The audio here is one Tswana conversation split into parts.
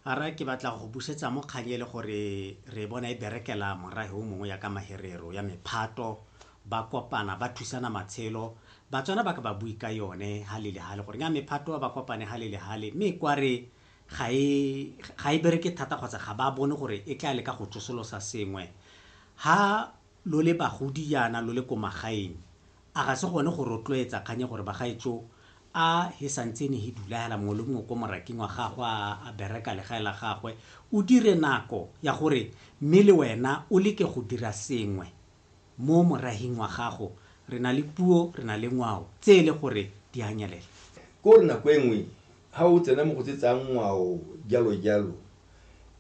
a re ke batla go busetsa mo kgang e le gore re bona e berekela morahe o mongwe ya ka maherero ya mephato ba kopana ba thusana matshelo batswana ba ka ba bue ka yone ha le le hale gore nga mephato ba kopane ha le le hale mme kwa re ga e ga e bereke thata kgotsa ga ba bone gore e tla le ka go tsosolosa sengwe ha lo le bagodi yana lo le ko magaeng A ga se gone go rotloetsa kgang ya gore bagaetsho a he santsene he dulahela mongwe le mongwe ko moraking wa gagwe a a bereka legae la gagwe, o dire nako ya gore mme le wena o leke go dira sengwe mo morahing wa gago? Re na le puo, re na le ngwao tse e le gore di a nyelela. Ke gore nako e nngwe ha o tsena mo go tse tsa ngwao jalo jalo,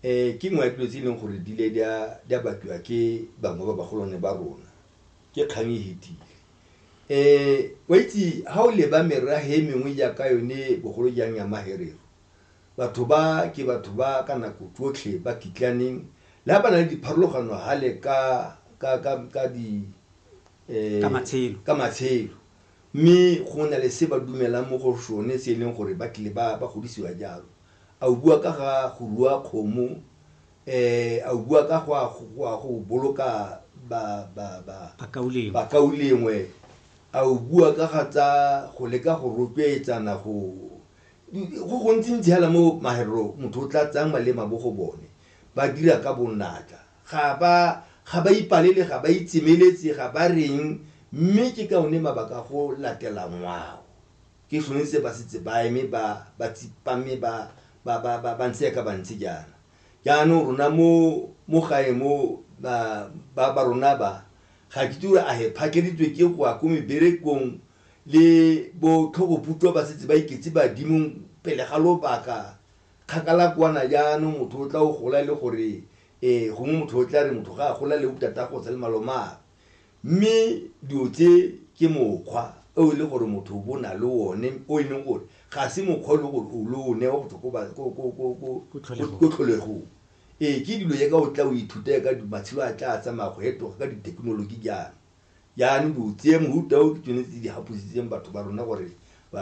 ke nngwe ya dilo tse e leng gore di ile di a batliwa ke bangwe ba bagolwane ba rona ke kgang e fetile um wa itse ha o leba merahe e mengwe jaaka yone bogolo jang ya maherero batho ba ke batho ba ka nako tsotlhe ba kitlaneng le ga ba na le dipharologano gale ka ka ka ka di eh, Ka matshelo. ka matshelo mme go na le se ba dumelang mo go sone se e leng gore ba tlile ba ba godisiwa jalo a o bua ka ga go rua kgomo A o bua ka go a go boloka bakaulengwe? A o bua ka ga tsa go leka go rotloetsana go go gontsintsi hela mo maherero motho o tla tsayang malema bo go bone ba dira ka bonatla ga ba ga ba ipalele ga ba itsemeletse ga ba reng mme ke ka one mabaka go latela ngwao. Ke gone se ba setse ba eme ba ba tsipame ba ba ba ba ba ntse yaka ba ntse jaana. Jaanong rona mo mo gae mo ba ba ba rona ba ga ke itse gore a he phakeleditswe ke go ya ko meberekong le bo tlhogoputwa ba setse ba iketse badimong pele ga lobaka kgakala kwana jaanong motho o tla o gola le gore e gongwe motho o tla re motho ga a gola le bo tatagotsa le malomagwe. Mme dilo tse ke mokgwa o e le gore motho o bo na le one o e leng gore ga se mokgwa o e leng gore o lo o newa go tswa ko tlholegong. Ee, ke dilo jaaka o tla o ithuta ka matshelo a tla tsamaya go fetoga ka dithekenoloji jaana. Jaanong dilo tse mofuta o ke tsone tse di gapositseng batho ba rona gore ba.